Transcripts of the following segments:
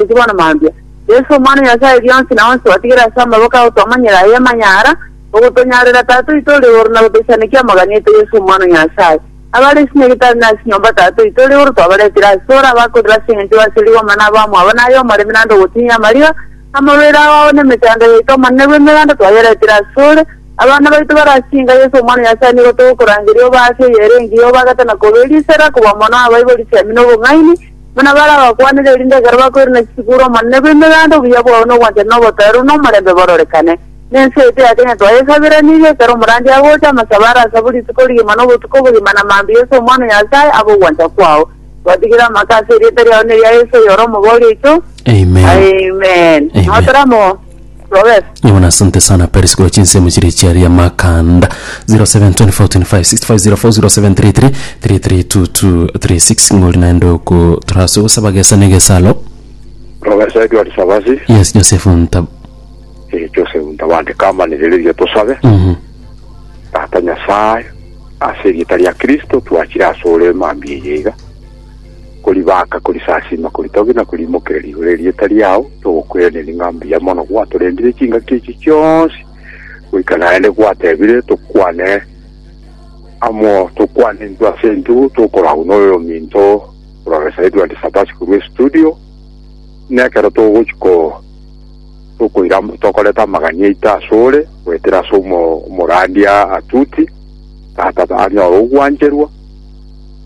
Inki bono mambia? Yeso, Omwana o Nyasae rionsi na onsi otigire ase amaboko ao twamanyire aye amanyara, ogotonyarera Tata oito ore igoro na gotoisanekia amagani aito Yeso Omwana o Nyasae. Abare ase nyagetari na ase nyomba Tata oito ore igoro twabaretire ase ore abakorire ase engencho y'oase rigoma na abamwabo na aye omoremi naende ogotinyia amariga. Amarwaire ao ao na emechando yaito Omonene bw'Emeranda twayeretire ase ore. Abana baito bare ase inka Yeso Omwana o Nyasae nigo togokorangeria obe ase eyere engiya obagate na koberia isera koba mono abaibori siamino obong'aini. Buna bare abakwanire, erinde ekero bakoirana chituko ore Omonene bw'Emeganda, obuya bwao na ogwanchani na obotoereru na omorembe bororekane. Ne ense eye teyake onye twayesaberanirie, ekero omorandia agocha, amasabe arasabwe rituko rigima na obotuko bogima, na mambia Yeso Omwana o Nyasae abe ogwancha kwao. Twatigire amaka ase erieta riao na eria Yeso oyore omobori oito. Amen. Amen. Amen. Nao taramoa. Robert. Yona, asante sana Paris kwa chinsemo chiri chiari amakanda 0724256504 0733332236 ng'ori naende oko turaso gosaba gesa na egesalo Robert Edward Sabasi, yes Joseph Ntab eh, Joseph Ntabande kamanirireria tosabe Mhm. Tata Nyasaye ase erieta ria Kristo twachire ase ore emambia eye iga koribaaka, korisasiima, koritogia na koriimokereria igoro erieta riao, togokweraneri ng'a mbuya mono gwatorendire chingaki echi chionsi, goika naende gwatebire tokwane amo tokwane intwe ase intwe tokorwa agwo noyo ominto ororesae Edward Sabasi korwa estudio, buna ekero togochia ko tokoira tokoreta amagani aito ase ore goetera ase omo omorandia Atuti, tata anyore ogwancherwa,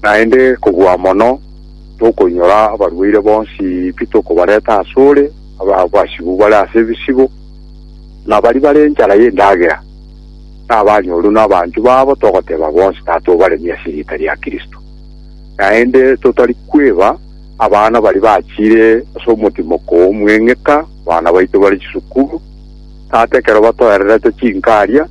Naende kobua mono tokoinyora abarwaire bonsi pi tokobareta asore, abasibu bare ase ebisibo, na baria bare enchara y'endagera, na abanyoru na abanchwa babo, togoteba bonsi tata obaremie ase erieta ria Kristo. Naende totari kweba abana baria bachire ase omotimoko omweng'eka, abana baito bare chisukuru, tata ekero batoererete chinkaria,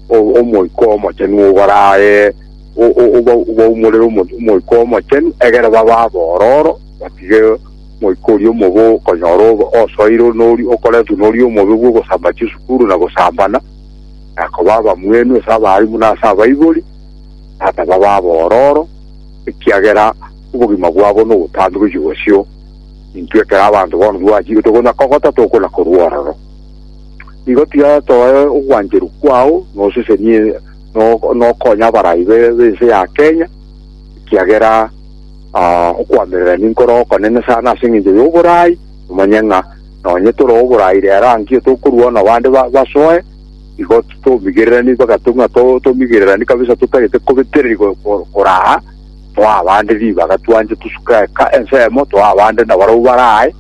o- Omoika Omochenu obaraae, o- o- oba- obaumorere omo- omoika omochenu, egere babe abororo, batige moika oria omobe okonyora obe osoirwe noria okoretwe noria omobe bw'ogosamba chisukuru na gosambana, na koba abamwenu ase abaalimu na ase abaibori, tata babe abororo, ekiagera obogima bwabo nobotambe gochia bosio, intwe ekero abanto bono twachire tokona kogota tokona korwa ororo. Igo tiga toe ogwancheru kwao, nosesenie no- nokonya abarai be- b'ense ya Kenya, ekiagera ah, okoamerera ninkore okonene sana ase eng'encho y'oborai, omanye ng'a nonye tore oborai rero aa nkio tokorua na bande ba- basoe, igo titomigererani mpaka to- ng'a to- tomigererani kabisa totagete kobetereri ko- ko- koraa toa abande ribaga twanche tosuke eka ensemo toa abande nabarabwo barae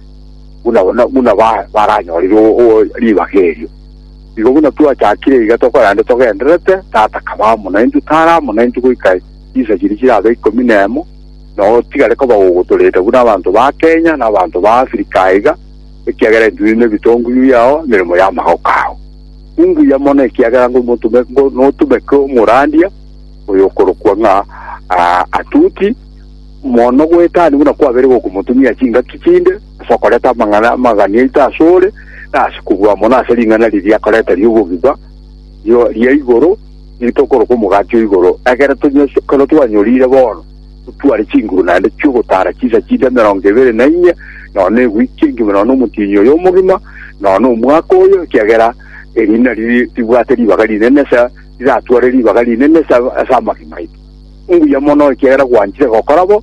buna buna buna ba- baranyorire o- o- ribaga erio. Igo buna twachakire iga tokorende togendererete, Tata kaba amo naintwe, tare amo naintwe goika chinsa chiria chirabe ikomi nemo, na otigare koba gogotorenda buna abanto ba Kenya na abanto ba Africa aiga, ekiagera intwe ninde ebitonguyu yao emeremo y'amagoko ao. Ninguya mono ekiagera ngomotume, ngo- notumeke omorandia oyo okorokwa ng'a ah, Atuti, mono goetania buna kwabeire gokomotumia chingaki chinde, ase okoreta amang'ana amagani aito ase ore, na ase kobua mono ase ring'ana riria akoreta ri'obogima, rio ria igoro, nigo tokoroka omogati o igoro, ekero tonyweso ekero twanyorire bono, totware chinguru naende chi'ogotara chinsa chinde emerongo ebere na inye, nonya egwiki engima nonya omotienyi oyo omogima, nonya omwaka oyo, ekiagera eri nari ribwate ribaga rinene ase riratware ribaga rinene ase ase amagima aito. Mbuya mono ekiagera gwanchire gokora bo,